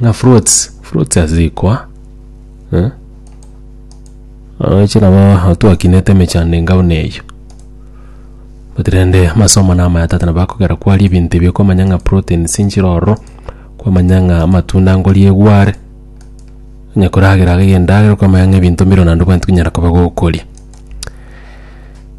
Ng'a fruits, fruits ase rikoa, eh? Oche nabo aho twakinete emechando enga buna eyio. But rende amasomo na amaya tata nabo akogera kwaria ebinto ebi okomanya ng'a proteins nchire ororo, kwamanya ng'a amatunda nkoria egware, onye koragera gaki endagera okamanya ng'a ebinto mbire naende obwenerete konyara koba gokoria.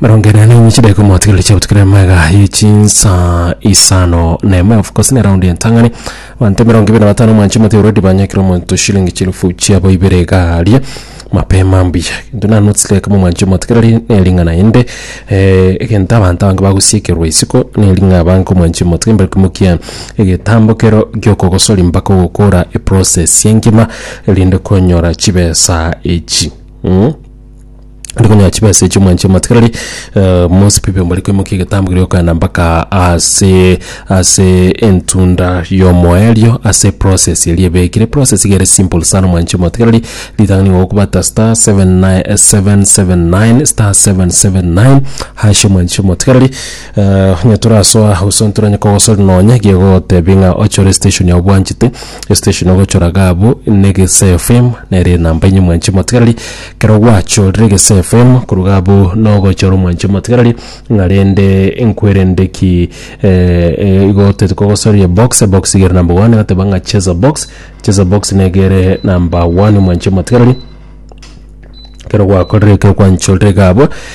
Marongera na inye chideko mwatigereire chia gotukira mega ye chinsa isano na emo of course ne round entang'ani banto mirongo ibere na batano mwanchi mate already banyakire omonto shilingi chielfu chiabo ibere iga aria mapema mbuya into na notes like kama mwanchi mwatigereire ne ring'ana inde eh, egento abanto abange bagosiekerwa isiko ne ring'a abange ko mwanchi motige mbari komokia egetambo kero giokogosori mpaka ogokora eprocess ye engima erinde konyora chibesa echi mm. Ri konyora chibesa echi omwanchire omatigarari eh, Mose Pipi mbari koimokia egetambo keria okana mpaka ase ase entunda y'omoerio ase process eria ebekire process iga ere simple sana omwanchire omatigarari ritang'ani igo okobata star 79 eh, 779 star 779 hash omwanchire omatigarari eh, onye torasoa gose ntoranye kogosori nonya iga egotebia ng'a ochore estation yao bwanchete estation ogochora iga abwo na egese FM nere enamba enye omwanchire omatigarari Ekero gwachorire egesefe koruga abwo na ogochora omwanche omotigarari, ng'a rende nkwerende ki eh, eh, igo titikogosoria ebox, ebox igere number one, agateba ng'a cheza box, cheza box negere number one omwanche omotigarari ekero gwakorire ekero kwanchorire iga abwo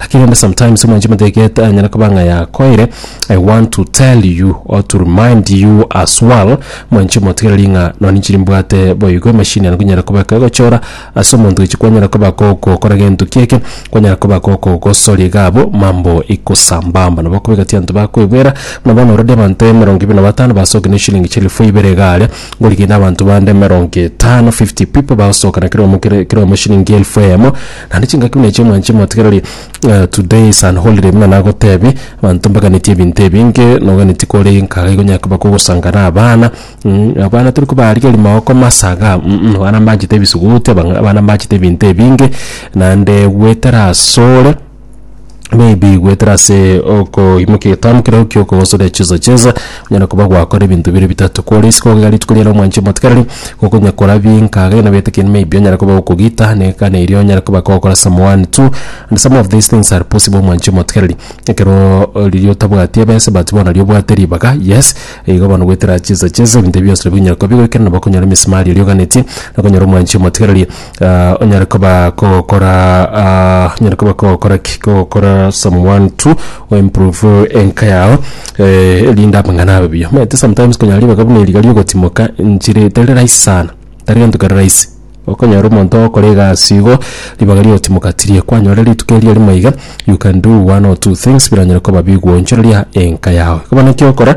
Lakini onde sometimes omwanchi omoteget anyare koba ng'a yakoire. I want to tell you or to remind you as well mwanchi omotigereri ng'a nonye ninche nimbwate boigo emashini eye nkonyara koba ekegochora ase omonto echi kwanyara koba gokokora gento kieke kwanyara koba gokogosoria iga abwo mambo ikosambamba nabo okobeka tianto bakoebwera buna bono already abanto emerongo ebere na batano basoki ne eshilingi chielfu ibere iga aria ngorigende abanto bande emerongo etano fifty people bagosoka na kera omo kera kera omo eshilingi elfu eyemo. Naende chingaki buna echio mwanche motegereri eh, today is an holiday buna nagotebi abanto mbaganetie ebinto ebinge noganetie kore nkaga igo nyaka bako gosangana abana mm, abana tori kobarigeri maoko masaga mm, mm, abana mbachete ebisuguti abang- abana mbachete ebinto ebinge naende gwetera asore maybe goetera ase okoimokia egetambe keria gokio okogosoria chizo cheza onyare koba gwakora ebinto bire bitato kore isiko iga rituko riria romwanchi omotikereri gokonya kora binka gena gete kende maybe onyare koba gokogita na ekana eria onyare koba gokora some one two and some of these things are possible omwanchi omotikereri ekero riria otabwati ebesa but bono riria obwate ribaga yes igo bono goetera chizo cheza ebinto ebi bionsi nabio binyare koba bigoikera nabo okonyora emesimari eria oganetie okonyora omwanchi omotikereri. onyare koba kogokora ah, onyare koba kogokora ki kogokora someone to improve enka yao eh, erinde amang'ana abe buya omanyete sometimes konyara ribaga buna eriga riogotimoka nchire tari rahisi sana tari gento kere rahisi okonyora omonto ogokora egasi igo ribaga rigotimoka tiri kwanyora rituko erio rimo iga you can do one or two things biranyare koba bigwochoreria enka yao bono ekio okora.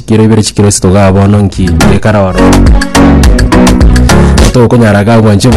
Chikero ibere chikero esito igaa bono nki, ekara oro. Tokonyara iga gwancha.